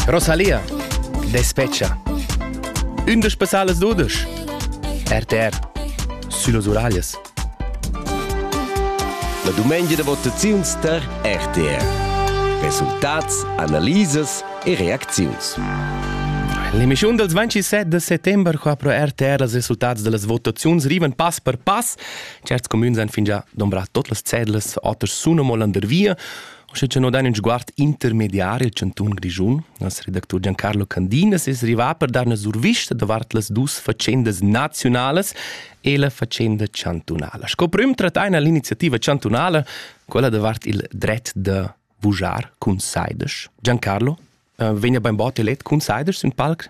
Rosalia, despecha. Ündisch besales dudisch. RTR. Sülos Uralias. La dumengia da votaziuns tar RTR. Resultats, analisas e reacziuns. L'emissiun dels 27 de settembre qua pro RTR els resultats de las votaziuns rivan pass per pass. Certs comuns han fingià dombrat tot las cedlas, oters sun amo landervia. Sche che no dain ün sguard intermediar il chantun Grischun, nos redactur Giancarlo Candina es rivà per dar üna survista davart las dus fatschendas naziunalas e la fatschenda chantunala. Sco prüm trattain l'iniziativa chantunala quella davart il dret da vujar cun saidesch. Giancarlo, eh, vegna bainbot elet cun saidesch sün palc?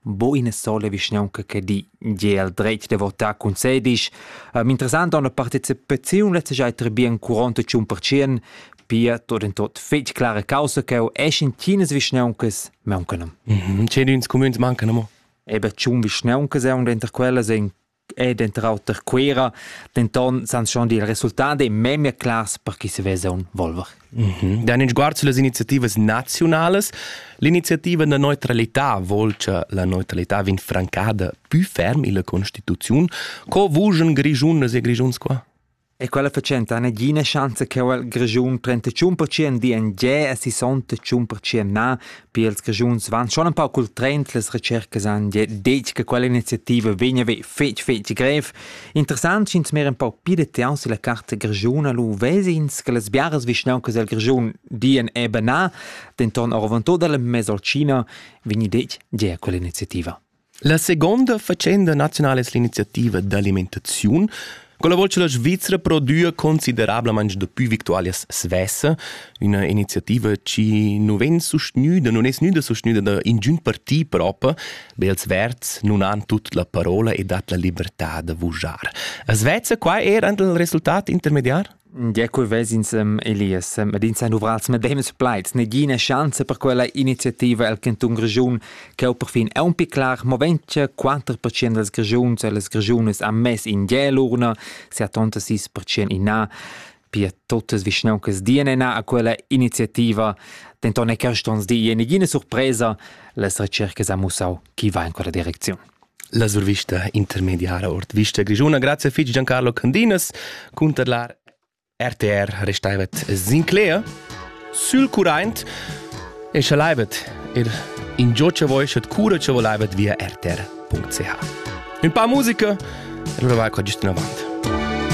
bo ina sola vischnaunca che di gie al dretg da votar cun sedisch. Um, interessant ha una partecipaziun letztejai bien 41%, pia tot en tot fetg clara causa che è in tinas vischnauncas mancan. Mhm, Cedins cumüns mancan mo. Eben tschun vischnauncas è una inter quellas in e denter auter Cuera, denton san schon dil resultat e memia clars per chi se vesa un Volver. Mm -hmm. Dan in sguard sulle iniziative nazionales, l'iniziativa da neutralità vuol che la neutralità vin francada più ferm illa Constituziun. Co vugen Grischunas e Grischuns qua? E quella fatschenta ha negina schanza cheu el Grischun 35% di en ge e 65% na, pia ils Grischuns van schon ein pauc cul trend, las recercas han ge detg che quella iniziativa vegna ve fetg fetg grev. Interessant sch'ins mer ein pauc pli detail sulla carta grischuna lu vesins che las biaras vischnauncas del Grischun dien eben na, denton oravantut dal Mesocina vegni detg ge quella iniziativa. La seconda faccenda nazionala es l'iniziativa d'alimentaziun, con la volta che la Svizzera prodüa considerablamaing dapü victualias svesse, üna iniziativa chi nu vegn sustgnüda, non es gnüda sustgnüda da ingün parti propa, be els Verds nun han tut la parola e dat la libertà da vujar. As vezza qua eir ant il resultat intermediar? Ja, quei ves'ins ehm, Elias, ed ins han duvrats medems plaids. Negina schanza per quella iniziativa el cantun Grischun che ho perfin aunc clar movent che 4% dals Grischuns e las Grischunas han mess in gel l'urna, 76% in na, pia totas vischnauncas dien ena a quella iniziativa. Denton è quest ons di ina surpresa, las recercas ha mussau chi va in quella direcziun. La survista intermediara ord vista grischuna. Grazie fitg Giancarlo Candinas cunter la RTR restaivet Sinclair sül current e chalaivet er in gio che voi schet cura che volaivet via rtr.ch. Un pa musica e allora vai qua giusto in avant.